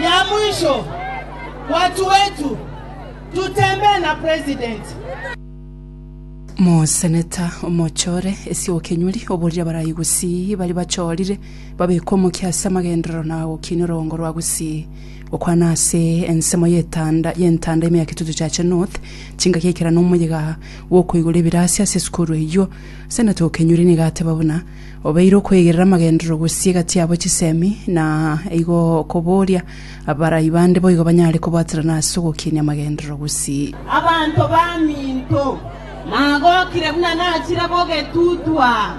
Ya mwisho, watu wetu, tutembee na president. Moseneta, omochore esiokenyori oborire abarai gusii baria bachorire, babeke omokia ase amagenderero na gokinia orogongo rwa gusii, gokwana ase ensemo y'etanda y'entanda ime ya Kitutu Chache North, chingaki ekera na omoyega bw'okoigora ebirasi ase esukuru eyio. Seneta Okenyori nigo ateba buna. Obeire okwegerera amagenderero gose egati yabo chisemi, na igo okoboria abarai bande boigo banyare kobwaterana ase ogokinia amagenderero gose. Abanto baminto nagokire buna nachire gogetutwa.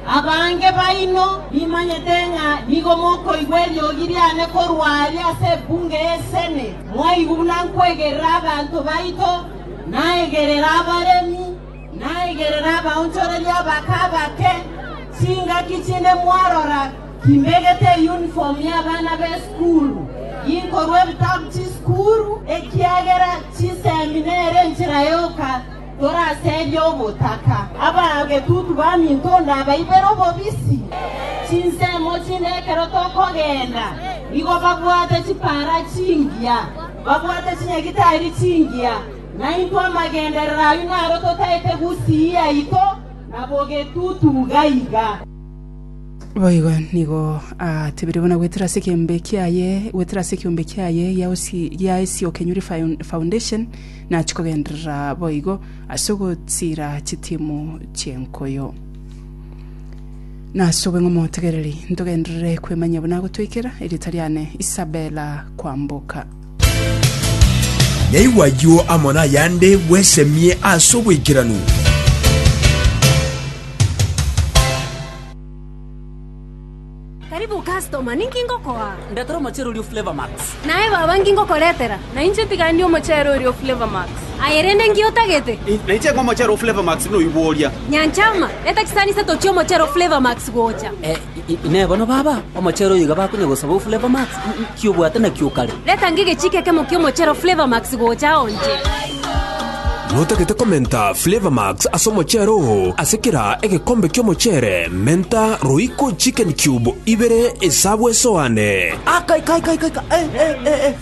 Abange baino nimanyete ng'a nigo mokoigwa eriogi riane korwa aria ase Ebunge y'Esene. Mwaigwa buna nkwegerera abanto baito, naegerera abaremi. Naigerere abaonchoreria abake abake chingaki chinde mwarora kimbegete eyunifomu y'abana b'esukuru, ginkorwa ebitabu chisukuru, ekiagera chisemi nere enchera yoka toraserie ogotaka. Abagetutu baminto ndabaibere obobisi chinsemo chinde ekero tokogenda, nigo babwate chipara chingiya, babwate chinyagitari chingiya, Naintwe amagenderero ayio naro totaete gusii yaito na bogetutu gaiga. Boigo nigo aatebire buna gwetera ase ekeombe kiaye, gwetera ase ekeombe kiaye gia osi gia ase okenyuri faun- foundation, nachia kogenderera boigo ase ogotira chitimu chi'enkuyu. Nase obong'e omotegereri ntogenderere kwemanyia buna agotoikera erieta riane Isabella Kwamboka. Naigwe ayio amo nayande bwesemie ase oboikeranu. Karibu customer, ninki ngokoa? Ndetera omochere oria o Flavour Max. Naye baba nki ngokoretera? Na inche tiga ndie omochere oria o Flavour Max. Aye rende nki otagete? Na inche ng'o omochere o Flavour Max noywo oria. Nyanchama, reta chisani ise tochie omochere o Flavour Max gocha. Eh, Inee! Bono baba omochere oyo iga bakonya gosaba o Flavor Max? Inki obwate nakio o kare? Retanga egechiika ekemo ki'omochere o Flavor Max gocha ao inche. Notagete komenta Flavor Max ase omochere oo. Ase kera egekombe ki'omochere, menta roiko chicken cube ibere esabu esoane. Aka! Ika! Ika! Ika! Ika! Eh! Eh! Eh! Eh!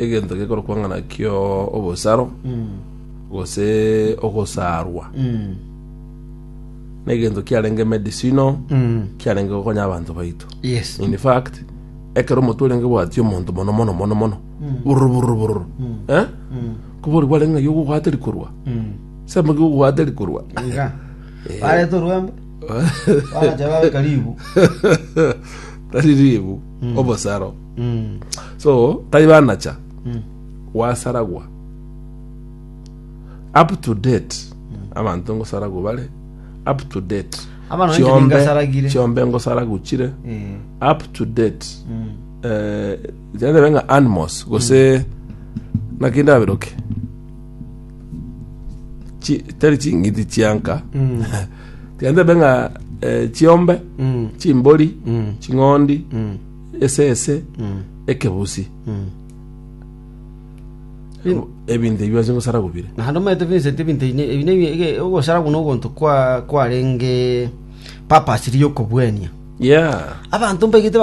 egento gekorokwa ng'a nakio obosaro gose ogosarwa negento kiarenge medicinal kiarenge gokonya abanto baito Yes. in fact ekero omoto orenge bwatia omonto mono mono mono mono bururu bururu bururu eh kobori kwarenge ng'a yogo obwate rikorwa sema ki obwate rikorwa Iga. Barete orwembe. Bagacha babe karibu. tari ribu obosaro so tari banacha gwasaragwa up to date abanto ngosaragwa bare up to date Abana banje Chiombe- ningasaragire. chiombe ngosaragwa chire Eh, up to date eh, janebe nga animals gose nakinde aberoke Chi- tari ching'iti chianka mm, tiandebe nga eh, chiombe mm, chimbori mm, ching'ondi mm. esese ekebusi, ebinto ebio ase gosara gobire. Naende omanyete Vincent ebinto ebi ne- ebi ne- ege- ogosara buna ogonto kwa- kwarenge purpose ri'okobuania Yeah. abanto mbaigete